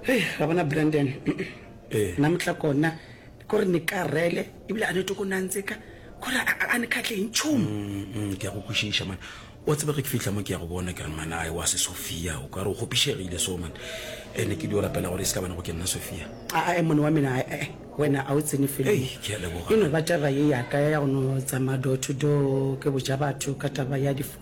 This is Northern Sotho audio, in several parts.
hei ra bona brandon eh. na motla kona kore ne ka rele ebile a ne toko nantse ka kore a ne kgatleng tšhomo mm, mm, ke ya go kwešiša mane wa tsebe ge ke fitlha mo ke ya go bona ke re manae wa se sophia o ka re o kgopišegile so mane ande ke di o rapela gore e se ka bana go ke nna sophia ae mone wa mena ee wena a o tsene feleno ba taba ye yaka ya go no tsamaya door to door ke boja batho ka taba ya difo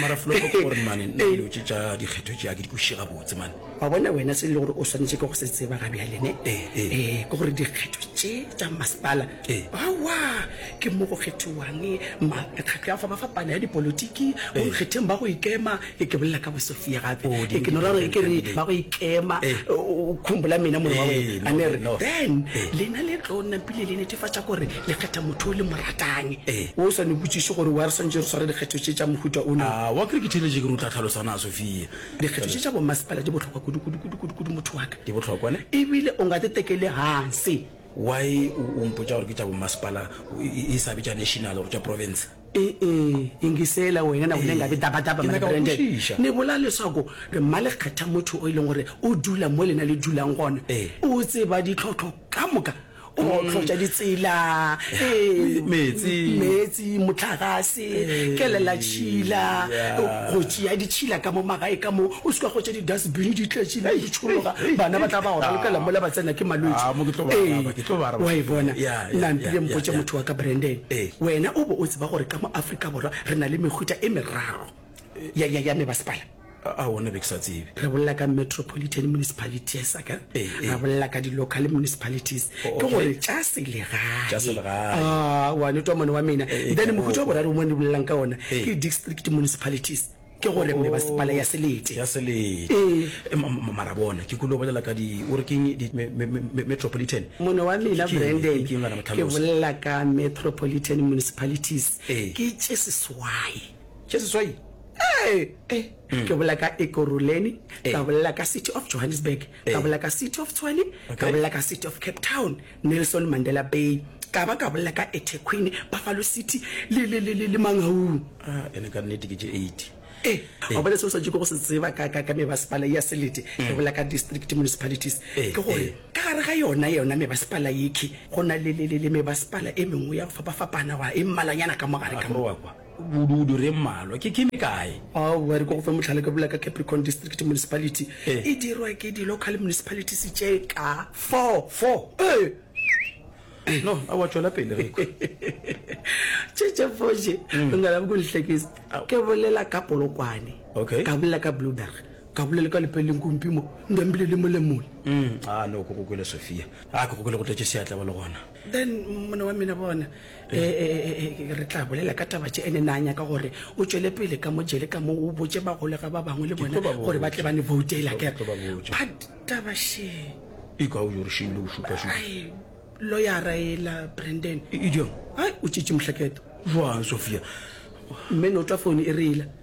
mara flopo ke gore mane nna dilo tše tša dikgetho tšea ke di kwešiše gabotse mane wa bona wena se e le gore o swanetše ke go se tseba ga bjalene um eh, eh. eh, ke gore dikgetho tše tša masepala awa ke mo go kgethiwang mekgatlo ya fapafapana ya dipolotiki go nkgetheng ba go ikema e ke bolela ka bosofia gape oh, e ke no rare ke re ba go ikema o khombola mena mone wa a ne re then lena le tlo napile le netefatša gore le kgetha motho o le moratane Ee. o sa no botšiše gore wa re swantše re sware dikgetho tše tša mohuta o na A wa kere ke theletše ke re o tla tlhalosa na, Sophia? dikgetho tše tša bommasepala di bohlokwa kudu kudu kudu kudu kudu motho wa ka Di bohlokwa ne? ebile o nga te tekele hansi Why o o mpotša gore ke tša bommasepala o- e e sa be tša national gore tša province? e-e ingisela wena na o ne nga be daba daba Ke nyaka go Brandon kwešiša. ne bola leswako re mma le kgetha motho o e leng gore o dula mo lena le dulang gona Ee. o tseba ditlhotlho ka moka o otlotša ditsela ee, Meetse. meetse motlagase kelela tšhila go tšea ditšhila ka mo magae ka mo o seka gotša di-dustbin di tletšile di tšhologa bana ba tla ba ora lokela mola ba tsena ke Ah, mo ke tlo ba araba, ke tlo ba araba. wa e bona Ya, ya, nna mpile ya, mpotše ya. motho wa ka branden Eh. wena o be o tseba gore ka mo afrika borwa re na le mehuta e merago ya, ya, ya mebasepala A wona be ke sa tsebe. Re bolela ka metropolitan municipalities a ka eh, eh. ra bolela ka di-local municipalities oh, okay. ke gore tša selegae ah, wa netwa mone wa mena eh, eh, then mohuta wa boraro mo ne bolelang ka ona eh. ke district municipalities ke gore mne ba sepala ya selete ya selete e mara bona ke kulo bolela ka di o re ke metropolitan mone wa mina brandon ke bolela ka metropolitan municipalities ke tše seswai tše seswai ee eh, ke bolela ka ekoruleni Eh. ka bolela ka city of johannesburg ka Eh. bolela ka city of tshwane ka Okay. bolela ka city of cape town nelson mandela bay ka ba ka bolela ka etequeen buffalo city le- le- le le- le mangaung Ah, ene ka nnete ke tše eighty ee Eh. o bone seo sa tšeko go se tseba ka ka- ka mebasepala ya selete ke bolela ka district municipalities Mm. Eh, ke gore eh. ka gare ga yona yona mebasepala yekhe go na le- le le- le mebasepala e mengwe ya go fapafapana wa e mmalanyana ka mogare ka mo akrowa kwa Bodudu re mmalwa ke ke me kae? Aowa, re ko go fe mohlala ka bula ka Capricorn District Municipality. Ee. E dirwa ke di local municipalities tše ka four. Four? Ee. No, aowa tšwela pele re kwa. Tše tše four tše, o ngala bo ko nhlekise. Ao. Ke bolela ka Polokwane. Okay. Ka bolela ka Blueberg. Ka bolela ka Lepeleng Kumpi mo, Ndembile le mole mole. Umm, aa no, ko go kwele Sophia. Aa, ke go kwele go tletše seatla ba le gona. Then monna wa mina bona eh, eh, eh, re tla bolela ka taba tše ene na nyaka gore o tšwele pele ka mojele ka moo o botše bagolega ba bangwe le bona gore ba tle ba ne voutela kere but taba she e ka o yo re šeile o šupasupa loyara ela brandon idiom ai o tšitše mohlaketo joang sophia mme no tla fone e reela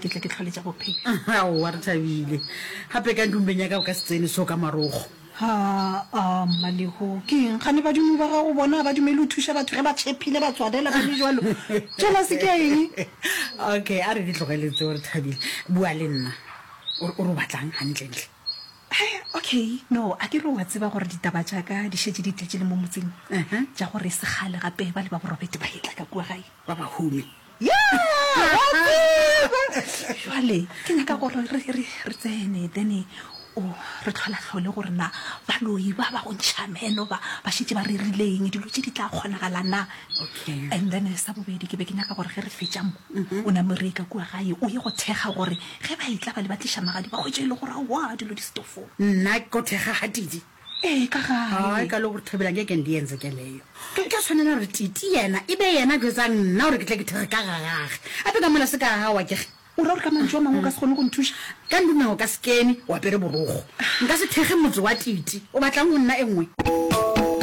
Ke tle ke tlhole tša bophelo. Aowa, re thabile. Gape ka ntumbeng ya ka o ka se tsene so ka marogo. Haa, Mmalehu, ke eng gane badimo ba gago bona ga ba dumele o thuše batho ge ba tšhephile ba tswalela ba le jalo? Jealous ke ya eng? Okay, a re di tlogele tseo, re thabile. Bua le nna. O re, o re o batlang gantlentle? He, okay, no, a ke re o a tseba gore ditaba tša ka di šetše di tletše le mo motseng, tša gore e se kgale gape ba le ba Borobete ba etla ka kua gae, ba ba hume. Yeah! Wa tseba! Jwale, ke nyaka gore re, re, re tsene, then o re tlholahlole gore na baloi ba ba go ntšha meno ba, ba šetše ba rerileng, dilo tše di tla kgonagala na. Okay. And then sa bobedi, ke be ke nyaka gore ge re fetša mo, o name re ye ka kua gae, o ye go thekga gore ge ba e tla ba le ba tliša magadi ba hwetše e le gore aowa dilo di setofong. Nna ko thekga ga Tidi? ee ka gae ka le gore thabela ke ke ndiyenze ke leyo ke ke tshwanela gore titi yena e be yena jwetsa nna gore ke tle ke thege ka gagage a pe ka mola se ka gawa ke ge o ra gore ka mantso a mangwe o ka se kgone go nthuša ka ndumeng o ka sekene o apere borogo nka se thege motse wa titi o batlang go nna e nngwe